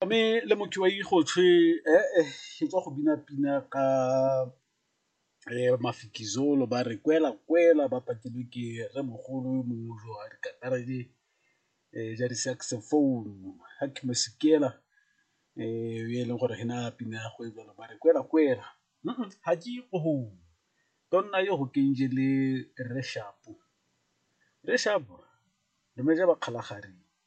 me le motho wa ikgotlhe e tswa go bina pina ka mafikizolo ba re kwela kwela ba patilwe ke re mogolo yo mongwe jo a dikatara di ja di-saxophone ga ke mo sekela e e leng gore ge na pina ya go e jalo ba re kwela kwela ga ke go tonna yo go kenje le re shapo re shapo re meja ba kgalagare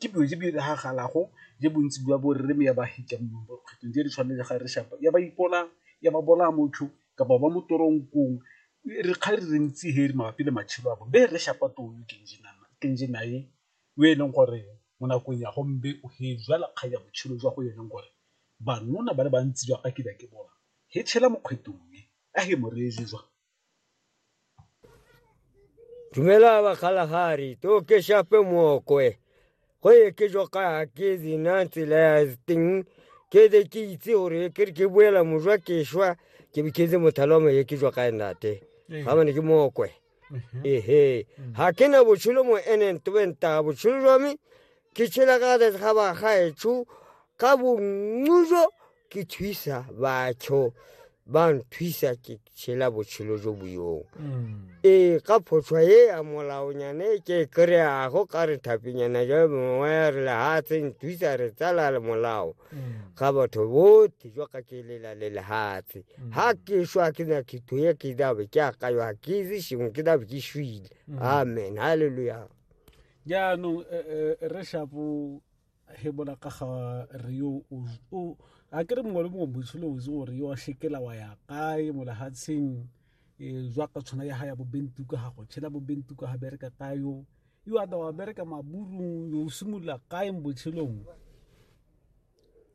Ke dilo tse di diragalago le bontsi jwa bo rre ya ba hetang mo makgetlong tse di tshwanang le ga re shapa ya ba ipolayang, ya ba bolaya motlho kapa ba mo tronk-ong re kgang di le ntsi he mabapi le matshelo a bone. Be rre Shapa ke o e leng gore mo nakong ya gombe o he jwala kgang ya botshelo jwa go e leng gore ba nna ba le bantsi jwa ga ke ne ke bola he tshela mo kgwetong e a he mo reye . Dumela ba Kalahari, to ke shape mookwe. Go ye ke jo ka ke dina tsela ya teng ke de ke itse gore ke re ke boela mojwa ke shwa ke be ke le mothalo mo ye ke jo ka enate. Ga bane ke mookwe. Ehe. Ha ke na botshelo mo enen tobenta botshelo jwa me ke tshela ka ga ba gaetsho ka bongujo ke thusa batho ba nthusa ke tshela botshelo jo bo yong ee ka photlhwa e ya molaonyana e ke e kry-ago ka re thapinyana ja mongwe ya re lehatshe nthusa re tsala le molao ga batho bote jwa ka ke lela le lehatshe ga ke shwa ke na khetho ye ke dabe ke akayo ga ke itse sengwe ke dabe ke shwile amen halleluja jaanong eh, eh, re shapo he bona ka ga re yo o a ke re mongwe le mongwe moitsho le otse gore yo a shekela wa ya kae mo lehatsheng um e, jwa ka tshwana ya ga ya bobentuka ga go tshela bobentuka ga bereka kae yo yo a da wa bereka maburung yo o simolola kae mo botshelong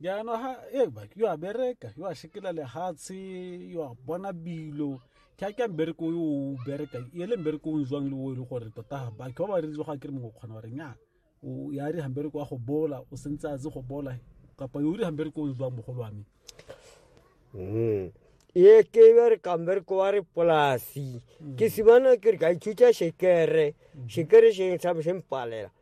jaanong ha e ba yo a bereka yo a shekela lehatshe yo a bona bilo ke a ke a mbereko yo o bereka e le mbereko o jwang le o e le gore tota batho ba ba reng ga ke re mongwe o kgona gore nya o ya re hambereko wa go bola o sentse a tse go bola kapa yo o re hambereko o jwang mogolo wa me mm. e ke ba re kambereko wa re polasi ke simana ke re ka ithuta shekere shekere se ntshabo se mpalela